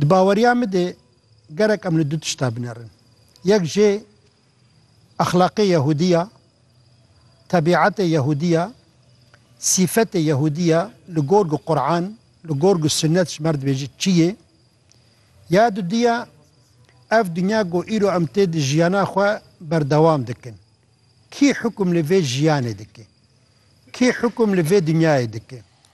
Di baweriya min de gerek em li du tişta binerin. Yek jê exlaqê Yehûdî ya, tebîetê Yehûdî ya, sîfetê Yehûdî ya li gorg Quran, li gorg Sunnet ji mer dibêje çi yê. Ya dudî ya ev dinya ku îro em tê di jiyana xwe berdewam dikin. Kî hukm li vê jiyanê dike? Kî hukm li vê dinyayê dike?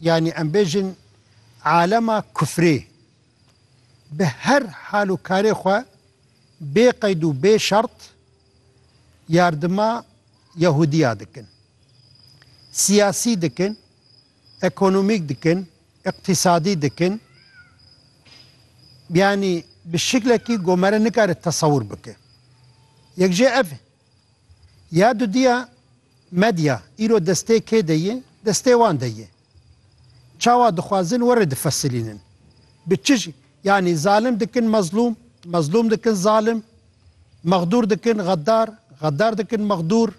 Yanî em bêjin alema kufrê bi her hal û karê xwe bê qeyd û bê şert yardima Yehudiya dikin. Siyasî dikin, ekonomîk dikin, îqtîsadî dikin. Yanî bi şiklekî gomere nikare tesewur bike. Yek jê ev e. Ya dudiya Medya îro destê kê de ye? Destê wan de ye. Çawa dixwazin were difesilînin. Bi çi ji yanî zalim dikin mezlûm, mezlûm dikin zalim, mexdûr dikin xeddar, xeddar dikin mexdûr.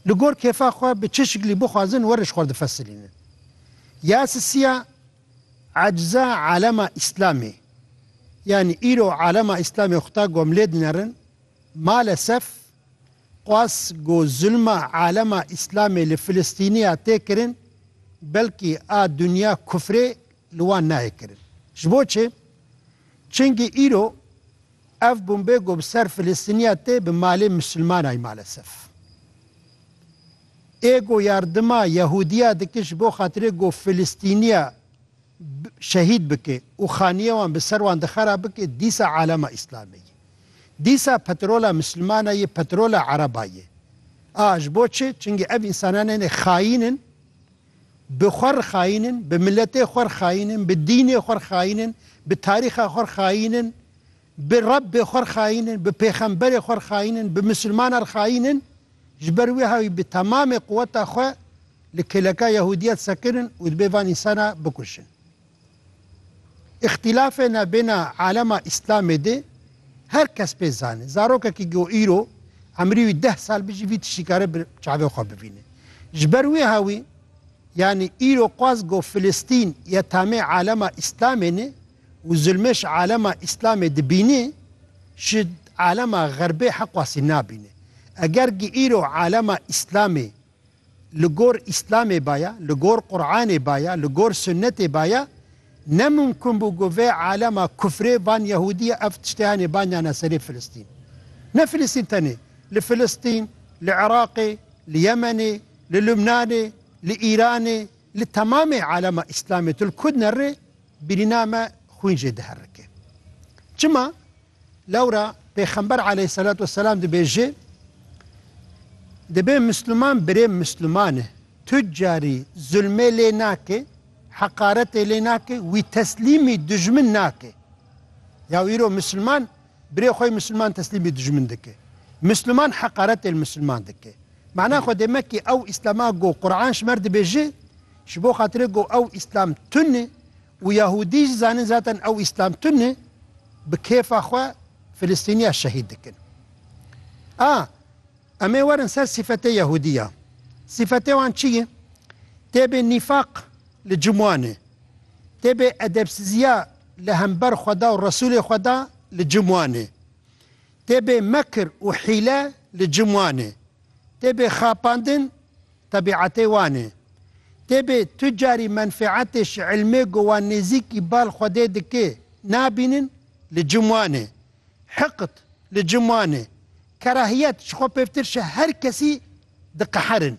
Li gor kêfa xwe bi çi şiklî bixwazin were ji xwe difesilînin. Ya sisiya ecza alema îslamê. Yanî îro alema îslamê xuta gom lê dinerin. Malesef Qas ku zulma alema Îslamê li Filistîniya tê kirin, belkî a dinya kufrê li wan nayê kirin. Ji bo çi? Çimkî îro ev bombê ku bi ser Filistîniya tê bi malê misilmanay malesef. Ê ku yardima Yehudiya dike ji bo xatirê ku Filistîniya şehîd bike û xaniye wan bi ser wan dixera bike dîsa alema Îslamê ye. Dîsa petrola misilmana yê petrola ereba yê. A ji bo çi? Çingî ev însanan hene xayîn in, bi xwe re xayîn in, bi miletê xwe re xayîn in, bi dînê xwe re xayîn in, bi tarîxa xwe re xayîn in, bi Rebbê xwe re xayîn in, bi pêxemberê xwe re xayîn in, bi misilmanan re xayîn in. Ji ber wê hawî bi temamê quweta xwe li kêleka Yehûdiyet sekirin û dibê van însana bikuşin. Îxtîlafê navbêna alema îslamê dê her kes pê zane. Zarokekî go îro emrî wî deh sal bi jî vî tiştî kare bi çavê xwe bivîne. Ji ber wê hawî yanî îro qas go Filistîn ya tamê alema îslamê ne û zulmê ji alema îslamê dibîne ji alema xerbê heqwasî nabîne. Eger gi îro alema îslamê Li gor Îslamê baya, li gor Quranê baya, li gor Sunnetê baya, ne mumkun bû ku vê alema kufrê van Yehûdiyê ev tiştê hanê banyane serê Filistîn. Ne Filistîn tenê, li Filistîn, li Iraqê, li Yemenê, li Lubnanê, li Îranê, li temamê alema Îslamê tu li ku dinerê, birîna me xwîn jê diherike. Çima? Lewra Pêxember aleyhisselat vesselam dibêje, Dibe Misliman birê Misliman e, tucarî zulmê lê nake, heqaretê lê nake, wî teslîmî dijmin nake. Ya îro Misliman birê xwe Misliman teslîmî dijmin dike. Misliman heqaretê li Misliman dike. Mana xwe dême kî ew Îslama go Quran ji mer dibêje, ji bo xatirê go ew Îslam tune, Û Yahûdî jî zanin zaten ew Îslam tune e, bi kêfa xwe Filistîniya şehîd dikin. A Em ê werin ser sîfetê Yahûdiyan. Sîfetê wan çi ye? Tê bê nîfaq li cim wan e. Tê bê edebsiziya li hember Xweda û Resûlê Xweda li cim wan e. Tê bê mekir û hîle li cim wan e. Tê bê xapandin Tebîetê wan e. Tê bê tu carî menfeetê şi ilmê ku wan nêzîkî bal Xwedê dike nabînin li cim wan e. Hiqd li cim wan e. Kerahiyet ji xwe pêvtir şi her kesî diqeherin.